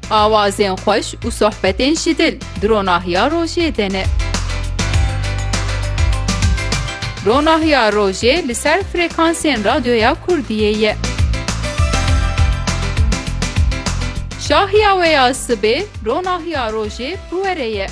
Awazên xweş û sohbetên ji dil di ronahiya rojê de ne. Ronahiya rojê li ser frekansên radyoya Kurdiyê ye. Şahiya we ya sibê ronahiya rojê bi we re ye.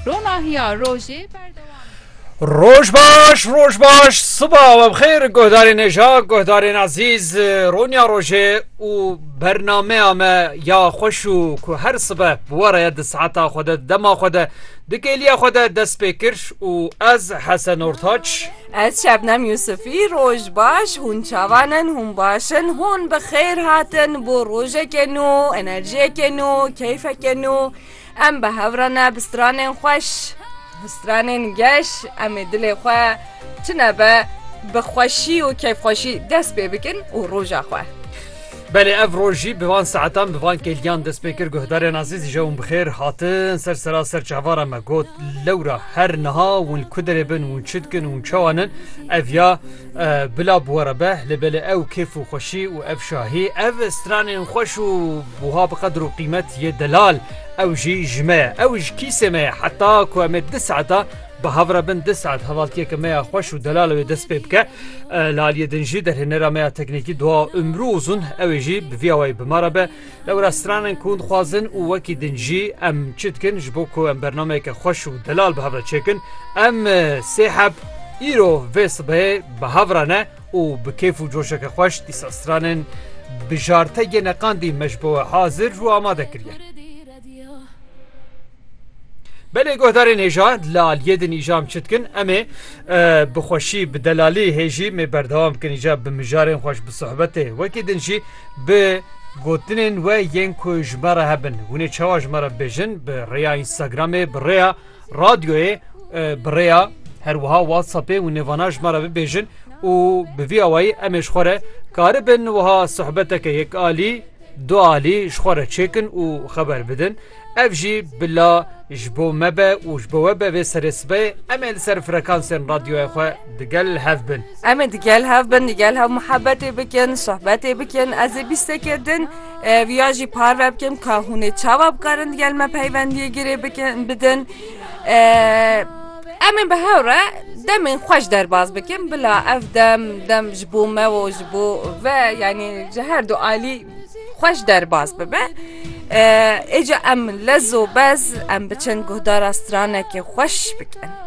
Ronahiya rojê berdewam e. Roj baş roj baş siba we bixêr guhdarên hêja guhdarên ezîz Ronya rojê û bernameya me ya xweş û ku her sibe bi we re di saeta xwe de dema xwe de di kêliya xwe de dest pê kir û ez Hesen Ortaç Ez Şebnem Yûsifî roj baş hûn çavan in hûn baş in hûn bi xêr hatin bo rojekê nû enerjiyekê nû keyfekê nû Em bi hev re ne bi stranên xweş, bi stranên geş em ê dilê xwe çi nebe bi xweşî û keyfxweşî dest pê bikin û roja xwe. Belê ev roj jî bi van saetan bi van kêliyan dest pê kir. Guhdarên azîz jewm bi xêr hatin ser sera ser çavara me got lewra her niha win ku derê bin win çi dikin win çawa nin ev ya bila bi we re be lê belê ew kêf û xweşî û ev şahî ev stranên xweş û Buha bi qedir û qîmet yê delal, ew jî ji me ye, ew ji kîsê me ye. Heta ku em ê du saeta bi hev re bin, du saet hevaltiyeke me ya xweş û delal ew ê dest pê bike. Li aliyê din jî derhênera me ya teknîkî Dua Umru Uzun ew ê jî bi vî awayî bi me re be. Lewra stran in ku hûn dixwazin û wekî din jî em çi dikin ji bo ku em bernameyeke xweş û delal bi hev re çêkin. Em sê heb îro vê sibehê bi hev re ne. û bi kêf û coşeke xweş dîsa stranin bi jartegê neqandî me ji bo we hazir û amade kiriye. Belê guhdarên hêja li aliyê din îjam çi dikin em ê bi xweşî bi delalî hêjî mê berdewam bikin îja bi mijarên xweş bi sohbetê wekî din jî bi gotinên we yên ku ji me re hebin hûnê çawa ji me re bêjin bi rêya Instagramê bi rêya Radyoyê bi rêya her wiha WhatsAppê û nêvana ji me re bibêjin û bi vî awayî em ê ji xwe re karibin wiha sohbeteke yek alî du alî ji xwe re çêkin û xeber bidin. Ev jî bila ji bo me be û ji bo we be vê serê sibehê em ê li ser frekansên radyoya xwe digel hev bin. Em ê digel hev bin, digel hev muhebetê bikin, sohbetê bikin. Ez ê bîstekê din. Ev ya jî parve bikim ka hûn ê çawa bi karin digel me peywendiyê girê bikin bidin. Em ê bi hev re demên xwe ji derbas bikin bila ev dem dem ji bo me û ji bo ve yanî ji her du alî xwe ji derbas bibe. Êca em lez û bez em biçin guhdara stranekê xweş bikin.